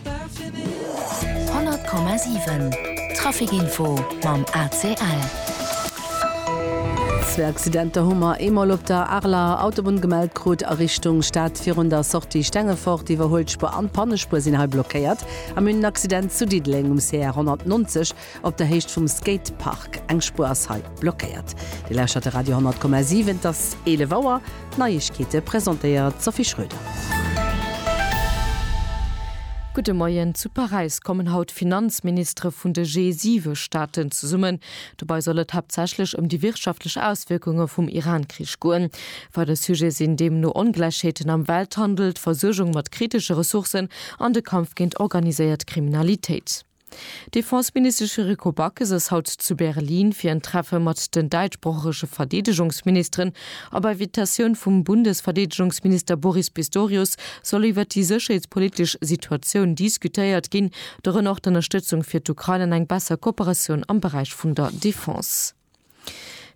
100,7 Trafikinfo mam ACL. Zwee Accidenter hu mer eemol op der Areler Autobunn gemellt krut. A Richtung Stad virun der Sortie Stengefort, d'Iwwerhuelspuer an d'Pannespuer sinn hei blockéiert. A mir hunn en Accident zu Diddeleng um CR 190, Op der Héicht vum Skatepark, eng Spuer ass hei blockéiert. Dir lauschtert de Radio 10,7, et ass 11 Auer. D'Neiegkeete presentéiert d'Sophie Schröder. Gudde Moien, Zu Paräis kommen haut d'Finanzministere vun de G7-Staaten zesummen. Dobei soll et haaptsächlech ëm déi wirtschaftlech Auswierkunge vum Iran-Krich goen. Weider Sujete sinn deemno Ongläichheeten am Welthandel, d'Versuergung mat kritesche Ressourcen an de Kampf géint organiséiert Kriminalitéit. D'Defenseministesch Yuriko Backes ass haut zu Berlin fir en Treffe mat den däitschsproochege Verdeedegungsministeren. A bei Vitatioun vum Bundesverdeedegungsminister Boris Pistorius soll iwwert déi sécherheetspolitesch Situatioun diskutéiert ginn, dorënner och d'Ënnerstëtzung fir d'Ukrain an eng besser Kooperatioun am Beräich vun der Defense.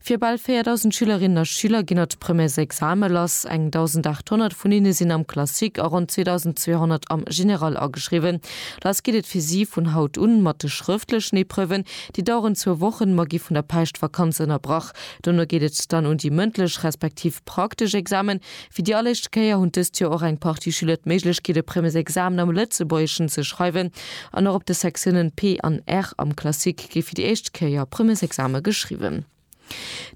Fir bal 4.000 Schülerinnen a Schüler ginn haut d'Premières Exame lass. Eng 1.800 vun hinne sinn am Classique a ronn 2.200 am Général ageschriwwen. Lass geet et fir si vun haut un mat de schrëftlechen Epreuven. Déi daueren zwou Wochen, ma gi vun der Päischtvakanz ënnerbrach. Dono geet et dann un déi mëndlech respektiv praktesch Examen. Fir déi alleréischt Kéier hunn dëst Joer och eng Partie Schüler d'Méiglechkeet, e Premesexamen am Lëtzebuergeschen ze schreiwen. An och op de Sektiounen P an R am Classique géif fir déi éischt Kéier Premesexame geschriwwen.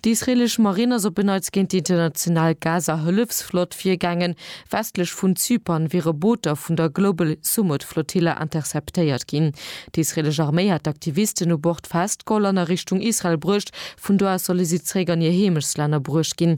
Déi israeelesch Marinn ass op en Neits géint déi international Gaza-Hëllefsflott virgaangen. Westlech vun Zypern wiere Booter vun der Global Sumud-Flotilla interceptéiert ginn. Déi israeelesch Arméi hat d'Aktivisten u Bord festgeholl an a Richtung Israel bruecht. Vun do aus solle si zeréck an hir Heemechtsländer bruecht ginn.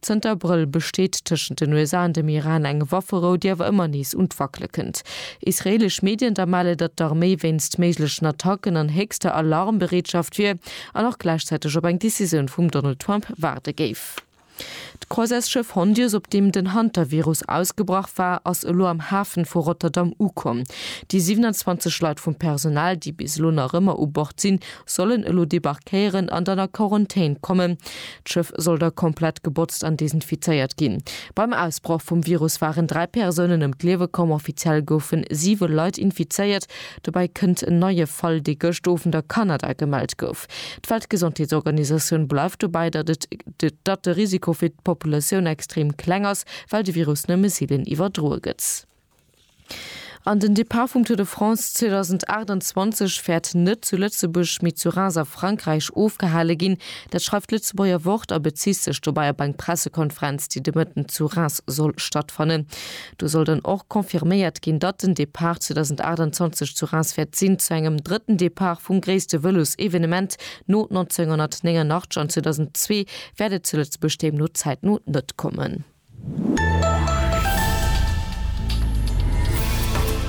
Zënter Abrëll besteet tëschent den USA an dem Iran eng Wafferou, déi awer ëmmer nees un d'Wackele kënnt. Israeelesch Medien da melle, datt d'Arméi wéinst méiglechen Attacken an héchster Alarmbereetschaft wier an och gläichzäiteg op eng Decisioun vum Donald Trump waarde géif. D'Croisesschëff Hondius, op deem den Hantavirus ausgebrach war, ass elo am Hafen vu Rotterdam ukomm. Déi 27 Leit vum Personal, déi bis elo nach ëmmer u Bord sinn, sollen elo debarquéieren an dann a Quarantän kommen. D'Schëff soll da komplett gebotzt an desinfizéiert ginn. Beim Ausbroch vum Virus waren dräi Persounen ëm d'Liewe komm. Offiziell goufen siwe Leit infizéiert. Dobäi kënnt en neie Fall, dee gëscht Owend a Kanada gemellt gouf. D'Weltgesondheetsorganisatioun bleift dobäi, datt et datt de Risiko fir d'Populatioun extrem kleng ass, well de Virus nëmme seelen iwwerdroe gëtt. An den Depart vum Tour de France 2028 wäert net zu Lëtzebuerg, mee zu Reims a Frankräich ofgehale ginn. Dat schreift d'Lëtzebuerger Wort a bezitt sech dobäi op eng Pressekonferenz, déi de Mëtten zu Reims soll stattfannen. Do soll dann och confirméiert ginn, datt den Depart 2028 zu Reims wäert sinn, zu engem drëtten Depart vum gréisste Vëlos-Evenement no 1989 an 2002 wäert et zu Lëtzebuerg deemno zäitno net kommen.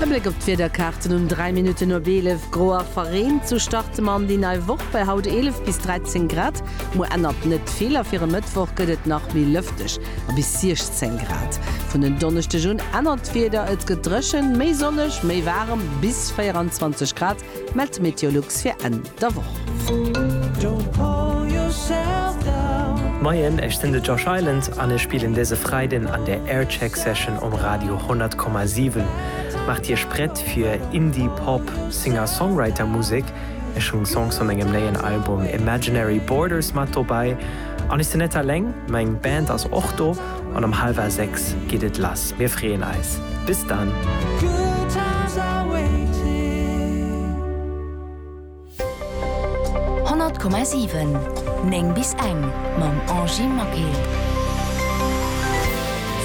E Bléck op d'Wiederkaarten um 3 Minutten no 11, Gro a verreent, sou starte mer an déi nei Woch bei haut 11 bis 13 Grad. Muer ännert net vill a fir e Mëttwoch gëtt et nach méi lëfteg a bis 16 Grad. Vun en Donneschdeg un ännert d'Wieder, et gëtt dréchen, méi sonneg, méi waarem, bis 24 Grad. Mellt d'Meteolux fir Enn der Woch. Moien, ech sinn de Josh Island an ech spillen dëse Freiden an der Aircheck Session um Radio 100,7. Maacht Iech prett fir Indie Pop Singer-Songwriter Musek. Ech hunn Songs vu mengem néien Album Imaginary Borders mat dobäi. An ech sinn net alleng, meng Band ass och do. an um halwer 6 geet et lass. Mir freeën eis. Bis dann! Honnert Komma siwen, néng bis eng, mam Angie Maquet.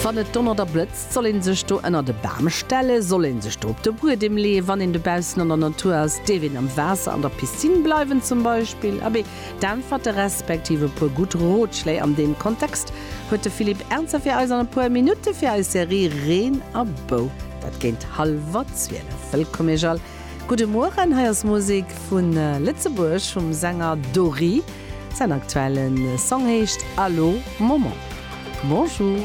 Wann et donnert a blëtzt, soll een sech do ënnert e Bam stellen? Soll een sech do op de Buedem leeën, wann een dobaussen an der Natur ass? Dierf een am Waasser an der Piscine bleiwen zum Beispill? Abee, D'Äntwerte respektiv e puer gutt Rotschléi an deem Kontext huet de Philippe Ernzer fir eis an e puer Minutte fir eis Serie Reen a Bou. Dat géint hallwer 12. Wëllkomm Iech all. Gudde Mueren, hei ass Musek vu Lëtzebuerg vum Sänger Dory. Säin aktuelle Song heescht Allo Maman. Bonjour.